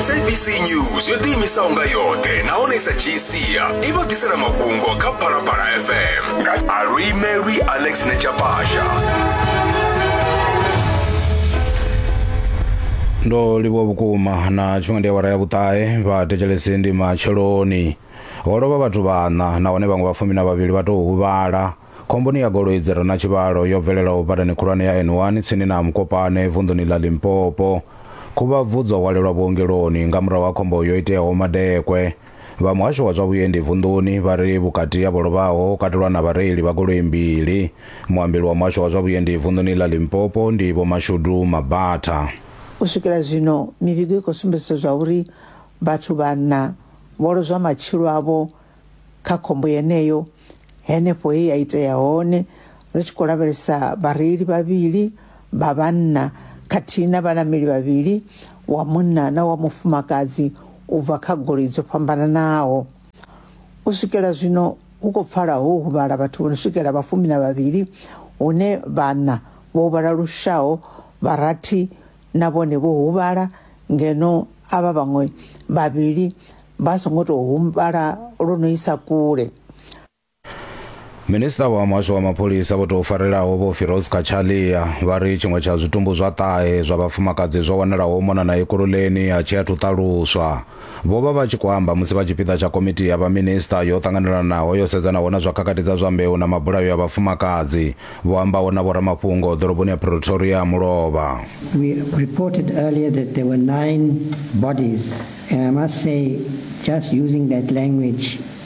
sabc news yo ḓiimisaho nga yoṱhe nahone sa gcia i vha ḓisela mafhungo kha phalaphala fm nga alwimelwi alex nechapasha ndo livhuwa vhukuma na tshifhinga ndi awara ya vhuṱahe vha thetshelesi ndi matsheloni ho lovha vhathu vhaṋa nahone vhaṅwe vhafumi na vhavhili vha tou huvhala Khomboni ya goloi dzi re na tshivhalo yo bvelelaho badani khulwane ya N1 tsini na Mkopane vunḓuni ḽa Limpopo. Khuvhabvu dzo hwalelwa vhuongeloni nga murahu ha khombo yo iteaho madekwe. Vha muhasho wa zwa vhuendi vunḓuni vha ri vhukati ha vho lovhaho ho katelwa na vhareili vha goloi mbili. Muambeli wa muhasho wa zwa vhuendi vunḓuni ḽa Limpopo ndi Vho Mashudu Mabatha. U swikela zwino mivhigo i khou sumbedzisa zwa uri vhathu vhaṋa vho lozwa matshilo avho kha khombo yeneyo henefho he ya itea hone ri tshi khou lavhelesa vhareili vhavhili vha vhanna khathihi na vhanameli vhavhili wa munna na wa mufumakadzi u bva kha goloi dzo fhambananaho. U swikela zwino hu khou pfala ho huvhala vhathu vho no swikela vhafumi na vhavhili hune vhana vho huvhala lushaho vharathi na vhone vho huvhala ngeno avha vhaṅwe vhavhili vha songo tou huvhala lwo no isa kule. Minisiṱa wa muhasho wa mapholisa vho tou farelaho vho Firoz Cachalia vha ri tshiṅwe tsha zwitumbu zwa ṱahe zwa vhafumakadzi zwo wanalaho mona na Ekurhuleni a tshi athu ṱaluswa. Vho vha vha tshi khou amba musi vha tshipiḓa tsha Komiti ya Vhaminisiṱa yo Ṱanganelanaho yo sedzanaho na zwa khakhathi dza zwa mbeu na mabulayo ya vhafumakadzi, vho ambaho na vhoramafhungo ḓoroboni ya Pretoria ya mulovha. We reported earlier that there were nine bodies and I must say just using that language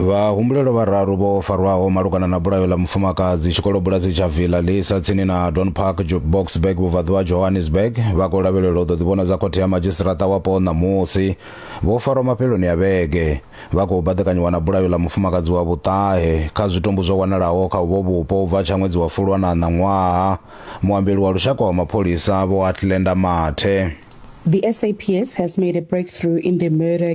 Vhahumbulelwa vhararu vho farwaho malugana na bulayo ḽa mufumakadzi tshikolobulasi tsha Villa Lisa tsini na Don Park, Jukeboxburg, vhubvaḓuvha ha Johannesburg, vha khou lavhelelwa u ḓo ḓivhonadza khothe ya madzhisiṱaraṱa wapo ṋamusi. Vho farwa mafheloni a vhege vha khou baḓekanyiwa na bulayo ḽa mufumakadzi wa vhuṱahe kha zwitumbu zwo wanalaho kha uvho vhupo u bva tsha ṅwedzi wa Fulwana ṋaṅwaha. Muambeli wa lushaka wa mapholisa, Vho Athlenda Mathe. The SAPS has made a breakthrough in the murder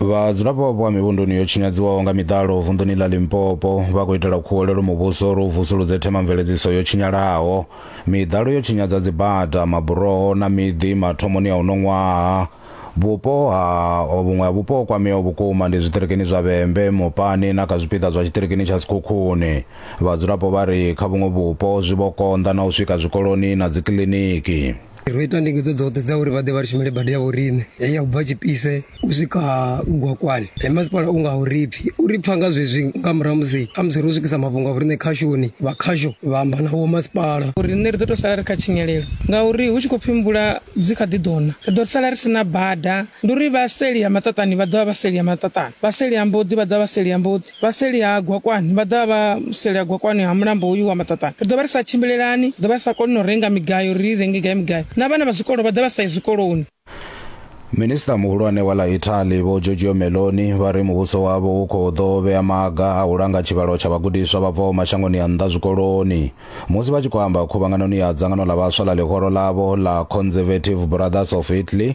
vhadzulapo vha mivhunduni yo tshinyadziwaho nga miḓalo vunḓuni ḽa limpopo vha khou itela khuwelelo muvhuso uri u vusuludze themamveledziso yo tshinyalaho miḓalo yo tshinyadza dzibada maburoho na miḓi mathomoni a uno ṅwaha vhupo ha vhuṅwe ha vhupo ho kwameaho vhukuma ndi zwiṱirikini zwa vhembe mupani na kha zwipiḓa zwa tshiṱirikini tsha sikhukhuni vhadzulapo vha ri kha vhuṅwe vhupo zwi vho konḓa na u swika zwikoloni na dzikiḽiniki ro ita ndingedzo dzoṱhe dza uri vha ḓe vha ri shumele bada ya vhoriṋe heyi ya u bva tshipise u swika gwakwani he masipala u nga uri pfhi u ri pfha nga zwezwi nga murahu musi a musi ro swikisa mafhungo a vhoriṋe khashoni vha khasho vha amba nawo masipala uri nṋe ri ḓo tou sala ri kha tshinyalelo ngauri hu tshi khou pfhi mvula dzi kha ḓi ḓona ri ḓo sala ri si na bada ndi uri vha seli ya maṱaṱani vha ḓovha vha seli ya maṱaṱani vha seli ya mboḓi vha ḓovha vha seli ya mboḓi Vha seli ha Gwakwani vha ḓovha vha seli ha Gwakwani ha mulambo hoyu wa Maṱaṱana. Ri ḓo vha ri sa tshimbilelani, ri ḓo vha ri sa koni na u renga migayo uri ri renge gai migayo, na vhana vha zwikolo vha ḓo vha sa yi zwikoloni. Minisiṱa muhulwane wa ḽa Italy Vho Giorgio Meloni vha ri muvhuso wavho u khou ḓo vhea maga a u langa tshivhalo tsha vhagudiswa vha bvaho mashangoni a nnḓa zwikoloni. Musi vha tshi khou amba khuvhanganoni ya dzangano ḽa vhaswa ḽa ḽihoro ḽavho ḽa Conservative Brothers of Italy,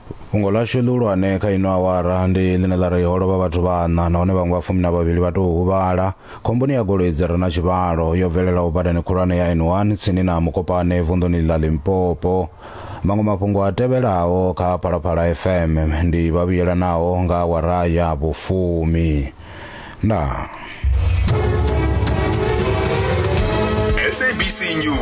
Fhungo ḽashu ḽihulwane kha ino awara ndi ḽine ḽa ri ho lovha vhathu vhaṋa nahone vhaṅwe vha fumi na vhavhili vha tou huvhala khomboni ya goloi dzi re na tshivhalo yo bvelelaho badani khulwane ya N1 tsini na Mokopane vunḓuni ḽa Limpopo. Maṅwe mafhungo a tevhelaho kha Phalaphala FM ndi vhavhuyelanaho nga awara ya vhufumi. Ndaa. SABC News.